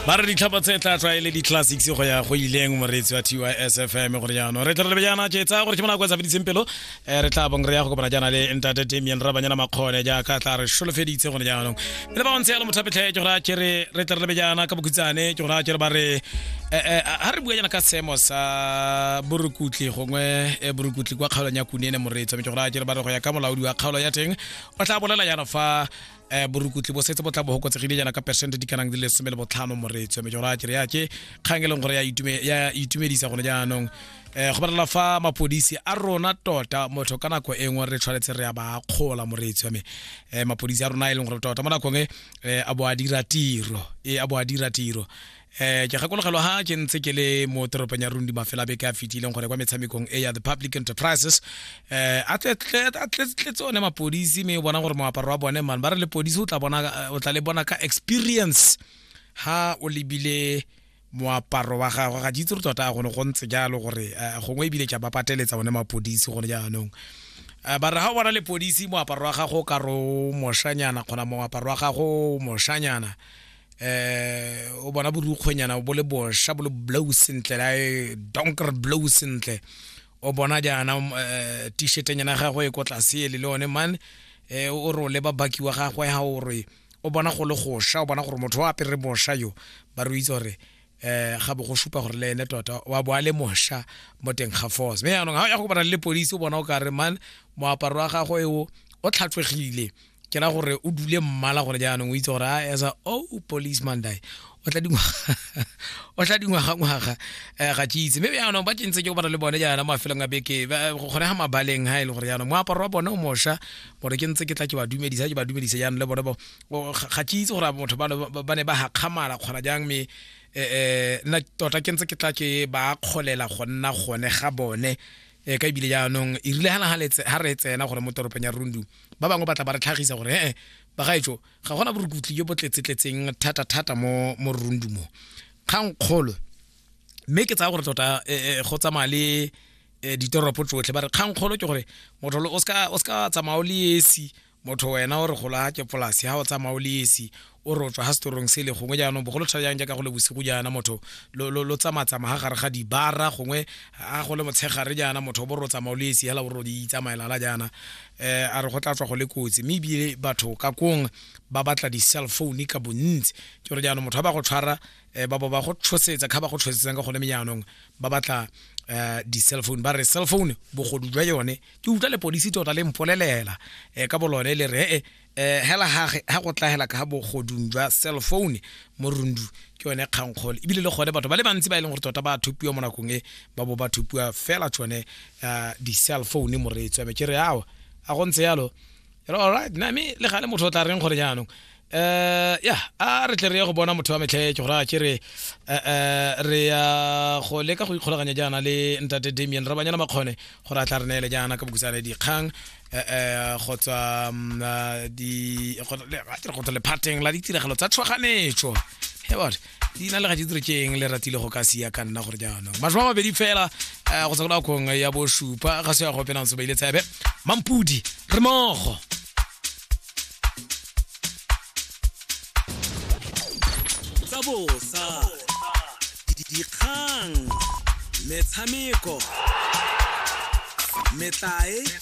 ba re ditlhapa tse tla tswa e le di-classics go ya go ileng moreetsi wa tys fm gore jaanong re tla re jaana ke tsaya gore ke mona kwa sa feditseng pelo um re tla bong re ya go kopana jaana le ntate damian ra banyana makgone jaaka tla re solofeditse gone jaanong le ba bontse yalo mothapetlhe ke gore a kere re tla re lebe jaana ka bokhutsane ke gore a kere ba re ga re bua jaana ka seemo sa borukutlhi gongwe borukutlhi kwa kgaolong ya kunene moreetsi ke gore a kere ba re go ya ka molaodi wa kgaolo ya teng o tla bolela jaana fa eh borukutli bo setse bo tla bo hokotsegile jana ka percent di kanang di le some le botlhano moreetswe mme jora kere yake kgang e leng gore ya itumedisa gone jaanong um go balela fa mapodisi a rona tota motho ka nako e nngwe re tshwanetse re ya ba kgola moreetswe mme um mapodisi a rona e leng gore tota mo nakong e a bo a dira tiro e a bo a dira tiro eh ke gakologelwa ha ke ntse ke le mo toropong ya rundi mafela a beke a fetileng gore kwa metshamekong e ya the public enterprises eh a tletse one mapodisi mme o bona gore moaparo wa bone mane ba re lepodisi o tla bona o tla le bona ka experience ha o lebile moaparo wa gagwe ga ditse re tota gone go ntse jalo gore eh, gongwe ebile tša ba pateletsa one mapodisi gore jaanong eh, ba re ga o bona lepodisi moaparo wa gago o ka re o moshanyana kgona moaparo wa gago o moshanyana eh o bona borukgwenyana bo le bosha bo le blow sentle la e donker blow sentle o bona jaana eh, t-shirtenyana gagwe e ko tlase ele le one man eh, o re o leba baki wa gagwe ga o re o bona go le gosha o bona gore motho o apere bosha yo ba re itse gore eh ga bo go supa gore le ene tota wa bo a le mosha mo teng ga force mme yaanong ga o ya go kopana le lepodisi o bona o ka re man moaparo wa gagwe o o tlhatswegile ke ra gore o dule mmala gore jaanong o itse gore a as a oh policeman die o tla dingwaga o tla dingwaga ngwaga eh, ga ke itse mme jaanong ba ke ntse ke kopana le bone jaana mafelong a beke ba- gone ga mabaleng ga e le gore jaanong moaparo wa bone o mosha gore ke ntse ke tla ke ba dumedisa ke ba dumedisa jaanong le bone bo- o- ga ga ke itse gore motho ba ba- ba ne ba gakgamala kgona jang mme eh, eh, nna tota ke ntse ke tla ke ba kgolela go nna gone ga bone eh, ka ebile jaanong e rile ga re tsena gore mo toropong ya rundu ba bangwe ba tla ba re tlhagisa gore ee bagaetso ga gona borukutli jo bo tletsetletseng thata-thata mo mo rundumong kgang kgolo mme ke tsaya gore tota eh, eh, go tsamaya le eh, ditoropo tsotlhe ba re kgang kgolo ke gore motho lo- o ska o ska tsamaya o le esi motho wena o re gola ke polasi ha o tsamaya o le esi o re o tswa ga setorong sele gongwe jaanong bogolo tshwa jang jaaka go le bosigo jaana motho lo tsamatsama ga gare ga dibara gongwe a go le motshegare jaana motho o bo re o tsamao le esi hela bo re o di itsamaelala jaana um a re go tla tswa go le kotsi mme ebile batho ka kong ba batla di-cell phone ka bontsi ke gore jaanong motho ba ba go tshwara um ba bo ba go tshosetsa kga ba go tshosetsang ka gone me jaanong ba batla um di-cell phone ba re cell phone bogodu jwa yone ke utlwa lepodisi tota le mpolelela um ka bolone le re e eh hela gage ga go tla hela ka bogodung jwa cell phone mo rundu ke yone kgankgole ebile le gone batho ba le bantsi ba e leng gore tota ba thupiwa mo nakong e ba bo ba thupiwa fela tsone eh, di-cell phone mo re tswame ke re awa a go ntse yalo re alright na me le gale motho o tla reng gore jaanong eh ya a re tle re ye go bona motho wa metlhe ke gore a ke re eh, eh, re ya go leka go ikgolaganya jaana le ntate damien re banyana makgone gore a tla re neele jaana ka bokusane dikgang eh, eh, go tswa mm, ah, di- go- le- a ke re go tswa lephateng la ditiragalo tsa tshwaganetso Hey, what? leina le ga ke dire ke eng le ratile go ka sia ka nna gore jaanong masho a mabedi fela eh, go tswa ko nakong ya bosupa ga se ya go penang sobeile tsebe mampudi re mogo tsa bosa di- dikgang metshameko metlae